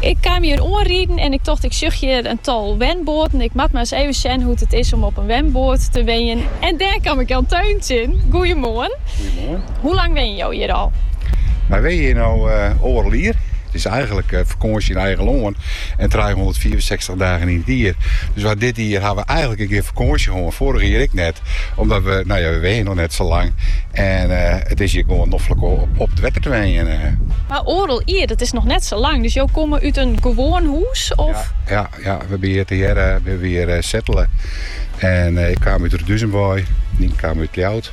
Ik kaam hjir oanriden en ik tocht ik sjoch hjir in tal wenboaten. Ik moat mar ris even sjen hoe't it is om op in wenboat te wenjen. En dêr kaam ik Jan Teun tsjin. Goeiemoarn. Goeiemoarn. Hoe lang wenje jo hjir al? Wy wenje hjir no oardel jier. It is eigenlik fakânsje yn eigen lân en trijehûndertfiifensechstich sechstich dagen yn it jier. Dus wat dit jier ha we eigenlik gjin kear fakânsje hân. Foarige jier ek net. Omdat we, nou ja, we wenjen noch net sa lang. En eh, it is hjir gewoan noflik om op, op it wetter te wenjen. eh. Mar oardel jier, dat is noch net sa lang. Dus jo komme út in gewoan hûs? Of? Ja, ja, we binne hjir tegearre, we binne hjir eh, settele. En eh, ik kaam út Roduzenbooi, Nien kaam út Ljouwert.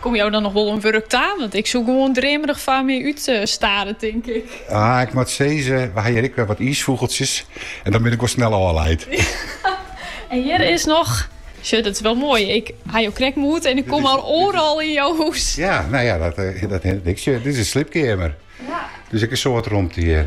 Komme jo dan noch wol oan wurk ta? Want ik soe gewoan dreamerich foar my út stare, tink ik. Ah, ik moat sizze, we ha hjir ek wer wat iisfûgeltsjes en dan bin ik wol snel ôfleid. En hjir is noch Sjoch, dat is wel mooi. Ik ha jo krekt moete en ik kom al oeral yn jo hûs. Ja, nou ja, dat, eh, dat, ik, dit is in sliepkeamer. Ja. Dus ek in soad romte hjir.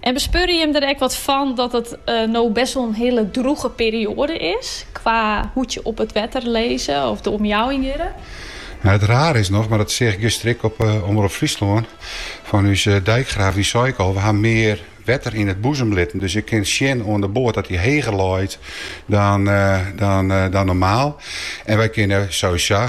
En bespeurje jim der ek wat fan dat it eh, no best wel in hiele droege perioade is? Qua hoe't je op het wetter leze of de omjouwing jierre? Nou, het raar is nog, maar dat zeg ik gisteren ik op uh, Omroep Friesland, van uw eh, dijkgraaf, die zei ik al, we hebben meer wetter in het boezem litten. Dus ik kan zien aan de boord dat hij heger looit dan, eh, dan, dan normaal. En wij kunnen sowieso